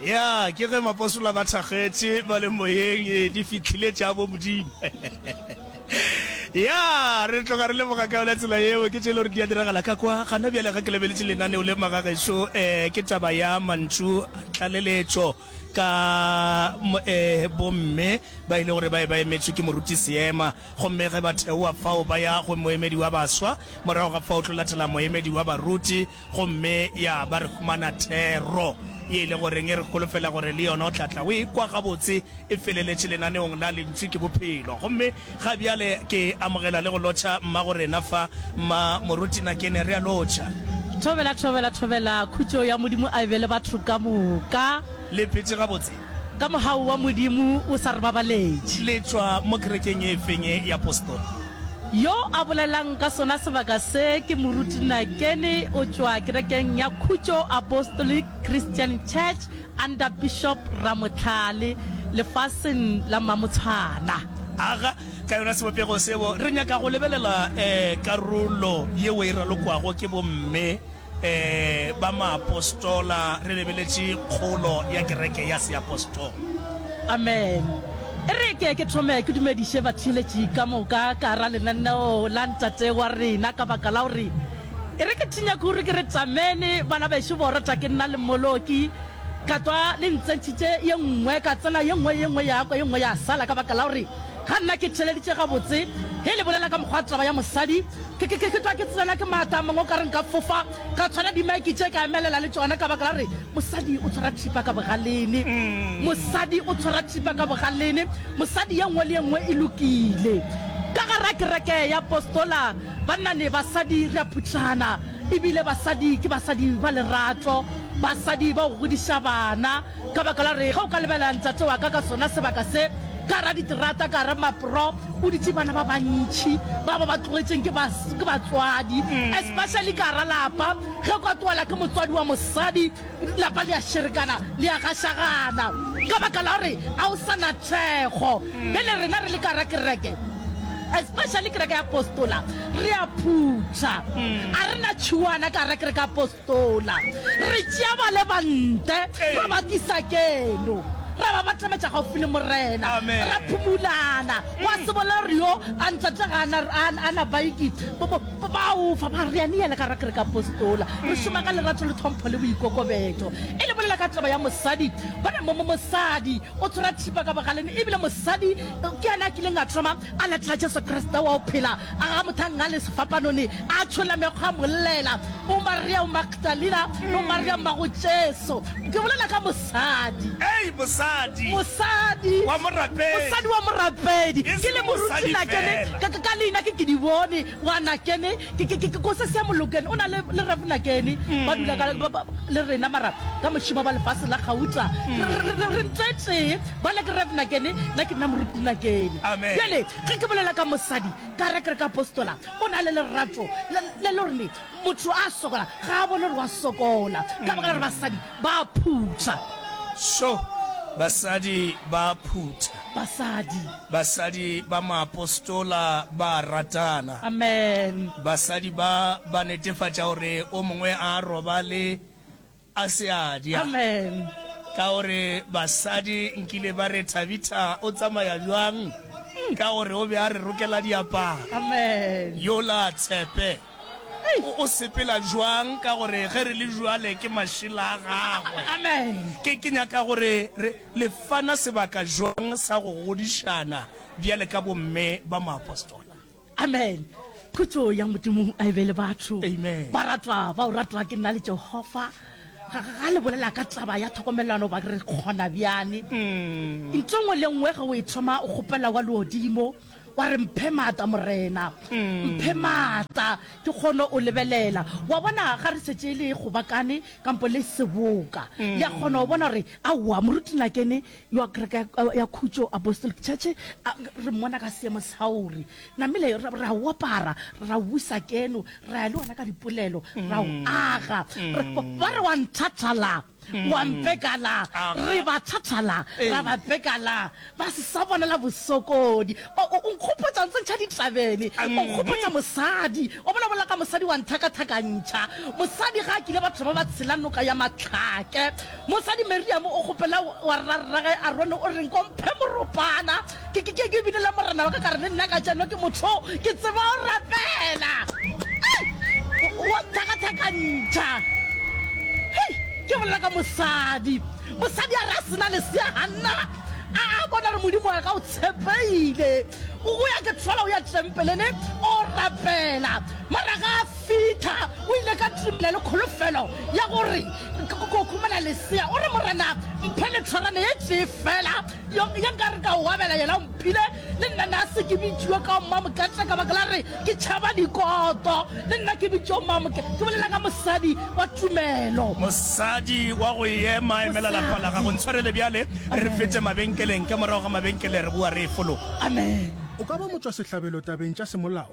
Ya, ke ge mapostola ba thakgetše ba le moyeng, ee, di fihlile tša bomodimo. Ya, re tloga re lemoga ka yona tsela yeo, ke tše e le gore di a diragala ka kwa. Gana bjale ge ke lebeletše lenaneo le, magagešo, ee, ke taba ya mantšu a tlaleletšo ka, ee, bomme ba e le gore ba be ba emetšwe ke moruti seema, gomme ge ba theowa fao ba ya go moemedi wa baswa, morago ga fao o tlo latela moemedi wa baruti. Gomme, ya ba, re humana thero, ye e le goreng e re holofela gore le yona o tla tla o e kwa gabotse e feleletše lenaneong la Lentsu ke Bophelo. Gomme ga bjale ke amogela le go lotšha mma go rena fa, Mma Moruti Nakene. Re a lotšha. Thobela, thobela, thobela. Khutšo ya Modimo a e be le batho ka moka. Le phetše gabotse? Ka mohau wa Modimo o sa re babaletše. Le tšwa mo kerekeng e feng ye ya postoli? Yo a bolelang ka sona sebaka se ke Moruti Nakeni, o tšwa kerekeng ya Khutšo Apostolic Christian Church under Bishop Ramohlale, lefaseng la Mamotshwana. Aga ka yona sebopego seo re nyaka go lebelela karolo yeo e ralokwago ke bomme. Ee, ba maapostola, re lebeletše kgolo ya kereke ya seapostola. Amen. E re ke ke thome ke dumediše batheeletši ka moka ka gara lenaneo la Ntate wa rena, ka baka la gore e re ke thinya kuru ke re tšamene bana bešo borata ke nna le Moloki ka twa le ntsentšhitše ye nngwe ka tsena ye nngwe ye nngwe ya kwa ye nngwe ya sala ka baka la gore Ga nna ke theleditše gabotse ge le bolela ka mokgwa taba ya mosadi. Ke, ke, ke, ke tlwa ke tsena ke maata a mangwe o ka re nka fofa ka tshwara dimike tše ka emelela le tšona ka baka la gore mosadi o tshwara thipa ka bogalene. Mosadi o tshwara thipa ka bogalene. Mosadi ye nngwe le ye nngwe e lokile. Ka gare ga kereke ya Apostola, banna le basadi re a phuthana, e bile basadi ke basadi ba lerato, basadi ba go godiša bana. Ka baka la re ge o ka lebelela ntate wa ka ka sona sebaka se, ka ra diterata, ka ra mapro, o ditše bana ba bantši ba ba ba tlogetšeng ke ba, ke batswadi, especially ka ra lapa, ge o ka tlogelwa ke motswadi wa mosadi, lapa le ya šerekana, le ya gašagana, ka baka la gore ga o sa na thekgo. Bjale rena re le ka ra kereke, especially kereke ya Apostola, re a phutha, ga re na tšhuana ka ra kereke ya Apostola. Tola. Re tšea ba le bante, ra ba tlisa keno, ra ba batlametša gaufi le Morena, ra phumulana. Gwa se bolela gore, Yo a ntate ga a na, a, a na baiki. Bo, bo, bo ba ofa, ba re, Ania le ka ra Kerekeapostola. Re šoma ka lerato le tlhompho le boikokobetšo. E le bolela ka taba ya mosadi, bona mo, mo, mosadi o tshwara thipa ka bogaleng, ebile mosadi ke yena a kileng a thoma A latela Jesu Kriste wa go phela, a ga mothanga le sefapanone, a tšhola mekgwa a mollela. O Maria o Magdalena, o Maria mmago Jesu. Ke bolela ka mosadi. Ei, mosadi. Mosadi. Wa morapedi. Mosadi wa morapedi. Ke le morutshina ke le, ka, ka, ka leina ke Kidibone. Ngwanakene, ke, ke, ke, ke kose se molokene. O na le, le Revnakene. Ba dula ka, ba, ba, le rena, mara ka mošimo ba lefase la gauta. Re, re, re, re, re ntlo e tee. Bale ke Revnakene, nna ke nna Morutinakene. Amen. Bjale, ge ke bolela ka mosadi, ka re, ke re ka apostola, o na le lerato le, le le gore motho a sokola ga a bone gore wa sokola, ka baka la gore basadi ba a phutha. Sure, basadi ba a phutha. Basadi. Basadi ba maapostola ba a ratana. Amen. Basadi ba ba netefatša gore o mongwe a a robale a se a dya. Amen. Ka gore basadi nkile ba re, Thabitha o tsamaya bjang? Ka gore o be a re rokela diaparo. Amen. Yola a tshepe. O sepela bjang ka gore ge re le bjale ke mašela a Gagwe? Ke nyaka gore re, le fana sebaka bjang sa go godišana bjale ka bomme ba maapostola? Amen. Khutšo ya Modimo a e be le batho. Amen. Baratwa ba o ratwa ke nna le Jehova, ga, ga le bolela ka taba ya tlhokomelano ba re kgona bjani. Ntho nngwe le nngwe ge o e thoma o kgopela wa leodimo, wa re mphe maatla morena mphe maatla ke kgone o lebelela wa bona ga re setse le gobakane kampo le seboka le a kgona o bona gore aowa moruti nakene yo a kereke ya- ya khutso apostolic church a- re mmona ka seemo sauri namele ra ra o apara ra o busa keno ra ya le ona ka dipolelo ra o aga Re- ba re wa nthathala Wa mpekala, re ba thathala, ra ba pekala, ba se sa bonela bosokodi. O, o, o nkgopotša ntse ntšha ditlabene, o nkgopotša mosadi, wa bona, bolela ka mosadi wa nthakathakantšha. Mosadi ga a kile batho ba ba tshela noka ya mahlake. Mosadi Miriam o kgopela wa rrarrage Arone, o reng, Ko mphe moropana. ke ke ke ke binela morena wa ka ka re le nna ka tšeno ke motho ke tseba o rapela wa thakathakantšha hei ke bolela ka mosadi mosadi a re a sena lesea ganna a a bona re modimo wa ka o tshepeile o ya ke tshola o ya tempelene o rapela maraga a fitha o ile ka tumela le kholofelo ya gore ko khumana lesea o re morena mphe letshwarane ye tee fela Yo, yo nka re ka o abela yena o mphile, le nna na se ke bitšiwe ka Mmamokete ka baka la re ke tšhaba dikoto. Le nna ke bitšo Mmamoke, ke bolela ka mosadi wa tumelo. Mosadi wa go ema, emela lapa la gago. Ntshwarele bjale re fete mabenkeleng, ka morago ga mabenkele re boa re efologa. Amen. O ka ba motšwasehlabelo tabeng tša semolao.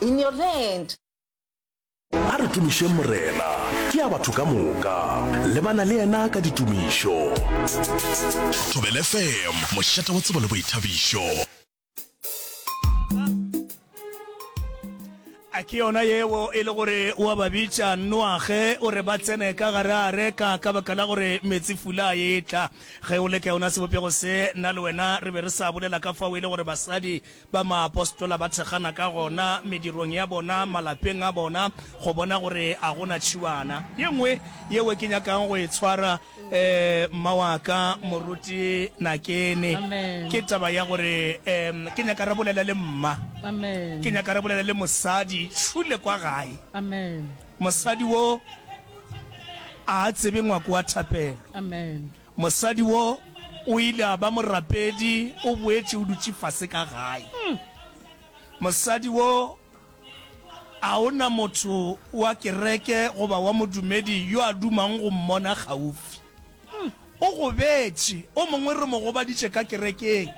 In your land. A re tumišeng Morena, ke ya batho ka moka, lebana le yena ka ditumišo. Thobela FM, mošate wa tsebo le boithabišo. A ke yona yeo e le gore o a ba bitša nnoage o re ba tsene ka gare a reka ka baka la gore metsi fula a etla? Ge o le ka yona sebopego se, nna le wena re be re sa bolela ka fao e le gore basadi Ba maapostola ba thekgana ka gona medirong ya bona, malapeng a bona, go bona gore a go na tšhiwana ye nngwe yeo ke nyakago go e tshwara. Um, mma wa ka, Moruti Nakene, ke taba ya gore, um, ke nyaka re bolele le mma. Ke nyaka re bolele le mosadi tšhule kwa gae. Mosadi wo a a tsebe ngwako wa thapelo. Mosadi wo o ile a ba morapedi, o boetše o dutše fase ka gae. Mosadi wo, a o na motho wa kereke goba wa modumedi yo a dumang go mmona kgaufsi? O gobetše. O mongwe re mo gobaditše ka kerekeng.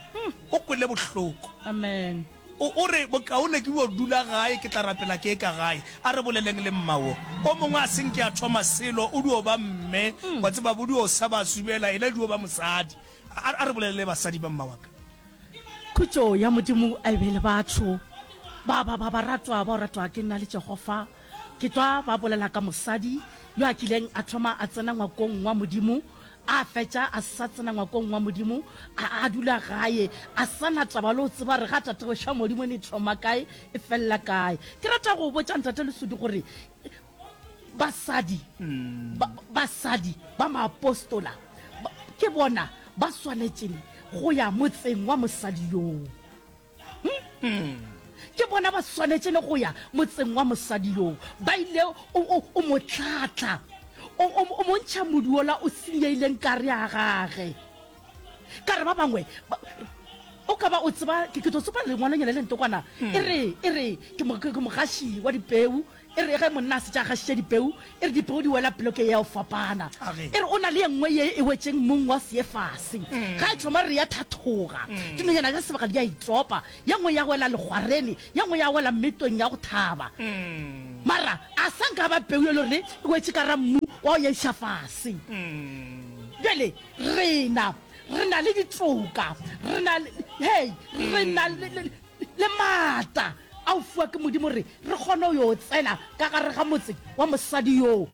O kwele bohloko. Amen. O, o re, Bokaone ke bjo dula gae, ke tla rapela ke eka gae. A re boleleng le mma wo. O mongwe a se nke a thoma selo, o dio ba mme, wa tseba, bo dio sa ba subela, yena e dio ba mosadi. A, a re bolelele basadi ba mma wa ka. Khutšo ya Modimo a e be le batho ba ba, ba baratwa bao ratwa ke nna le Jehofa. Ke tlwa ba bolela ka mosadi yo a kileng a thoma a tsena ngwakong wa Modimo, A fetša a sa tsena ngwakong wa Modimo, a, a dula gae, a sa na taba le go tseba gore ga tatego xa Modimo e ne thoma kae, e felela kae. Ke rata go botša Ntate Lesudu gore basadi, ba, basadi ba maapostola ba, ke bona ba swanetšeng go ya motseng wa mosadi yoo. Mm-hmm. ke bona ba swanetše le go ya motseng wa mosadi yoo ba ile o mo tlatla o montšha moduola o senyeileng kare ya gage ka re ba bangwe o ka ba o tseba ke tlo tsopa lengwalonyana le ntokwana mm. e re e re ke mogaši wa dipeu E re ge monna a setša a gašiša dipeu, e re dipeu di wela ploke ya go fapana. E re o na le ye nngwe ye e wetšeng mmung wa seefase. Ga e thoma re ya thathoga, dinonyana tša sebaka di a itsopa, ye nngwe ya wela legwarene, ye nngwe ya wela metong ya go thaba. Mara a sa nka ba peu e le gore e wetše ka ra mmu wa go nyadiša fase. Bjale rena re na le ditoka, re na le, hei, re na le, Le maatla a o fiwa ke Modimo gore re kgone go yo tsena ka gare ga motse wa mosadi yoo.